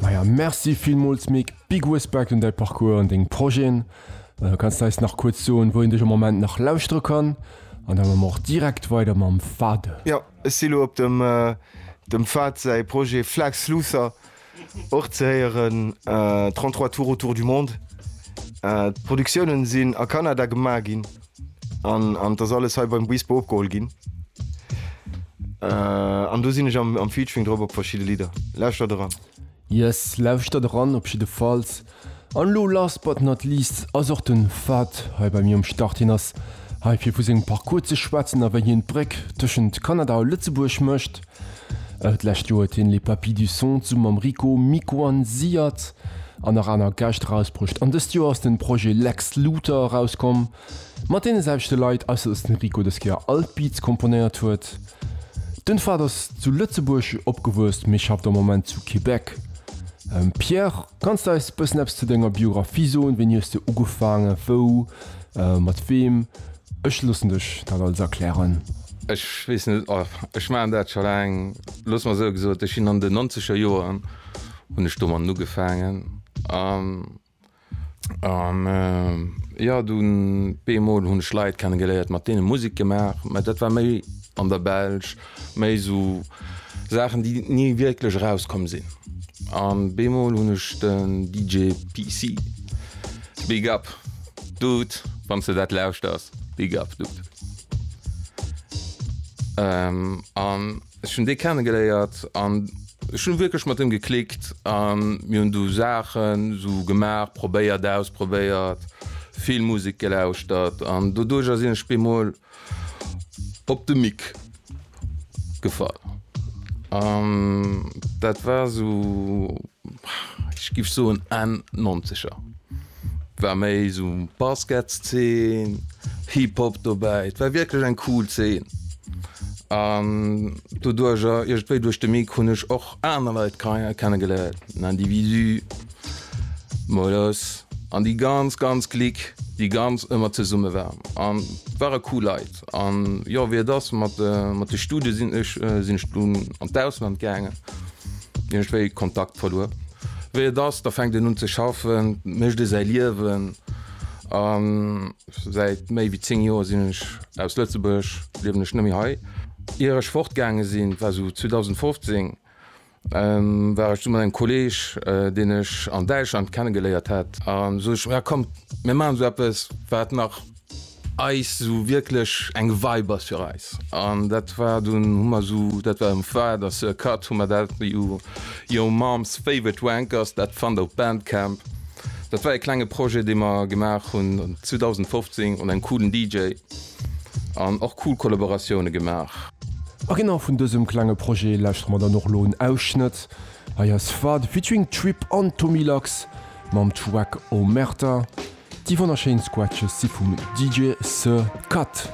Maja Merci villmools Mick, big Respekt un däi Parcours an deng Projeten. Kanns d'eis nach kuerz soen, wou een dech am Moment nach lauschtere kann? An da mme mer och direkt weider mam Fahde. Jo, ech si lo op dem dem Fahd säi Projet Flag Sluther och ze héieren, 33 tours autour du monde. D'Produktiounen sinn a Kanada gemaach ginn. An an d'ass alles hei beim Buispe opgeholl ginn. An do sinn ech am am Featuring drop op verschidde Lidder. Lauschtert eran! Yes, lauschtert eran op jiddefalls. An elo last but not least ass och den Fahd hei bei mir um Start. Hien ass hei fir vu sengem Parcours ze schwätzen a wéi hien d'Bréck tëschent Kanada a Lëtzebuerg mécht. D'lescht Joer huet hien Les Papis du Son zu mam Rico Mikoanziert an nach aner Gäscht erausbruecht an dëst Joer ass den Projet Lex Luthor erauskomm mat deene selwechte Leit, ausser dass den Rico dës Kéier all d'Beats komponéiert huet. Den Fahd ass zu Lëtzebuerg opgewuess mee schafft am Moment zu Québec. Pierre. Kanns de eis bëssen eppes zu denger Biographie soen? Wéini hues de ugefaangen? Wou? Mat weem? Ech loossen dech dat alles erklären. Ech weess net, ech maachen dat scho laang. Looss mer esou gesot, ech sinn an den nonzeger Joren hunn ech domatten ugefaangen an jo, dunn bemol hunn ech Leit kenne geléiert, mat deene Musek gemaach, mä dat war méi an der Belsch. Méi sou Saachen déi ni wierklech erauskomm sinn. An beemol hunn ech den DJ PC. Big up Dude, wann s de dat lauschters, Big up Dude. An ech hunn dee kennegeléiert an ech hunn wierklech mat him geklickt a mir hunn du Saachen sou gemaach, probéiert, ausprobéiert, vill Musek gelauschtert an doduercher sinn ech beemol Op de Mick gefall an dat war sou ech giff soen Enn Nonzeger war méi sou Basketszeen, Hip Hop dobäi. Et war wierklech eng cool Zeen an doduercher iergendwéi duerch de Mick hunn ech och aner Leit kei kenne geléiert, den Individu, Moies an déi ganz ganz Clique déi ganz ëmmer zesumme war an ware cool Leit an jo wéi et ass mat mat de Studie sinn ech sinn ech dunn an d'Ausland gaangen hunn ech wéi Kontakt verluer. Wéi et ass da fänkt een un ze schaffen, mécht ee säi Liewen an säit méi wéi 10 Joer sinn ech aus Lëtzebuerg, liewen ech net méi hei. Ier ech fortgaange sinn war sou 2015 War ech du mat engem Kolleg, deen ech an Däitschland kennegeléiert hat. An sot ech, jo kommt, mir maachen esou eppes, wat nach eis esou wierklech eng Vibe ass fir eis. An dat war dunn, hu mer esou, dat war um Fahd a Sir Cut, hu mer dat Your Mom's Favorite Wankers, dat fannt der op Bandcamp. Dat war e klenge Projet, dee mer gemaach hunn 2015 un engem coolen DJ. An och cool Kollaboratioune gemaach. A genau vun dësem klenge Projet lauschtere mer dann och elo en Ausschnëtt. Hei ass Fade featuring Trip an Tommy Lax mam Track Omerta. Déi wonnerschéin Scratches si vum DJ Sir Cut.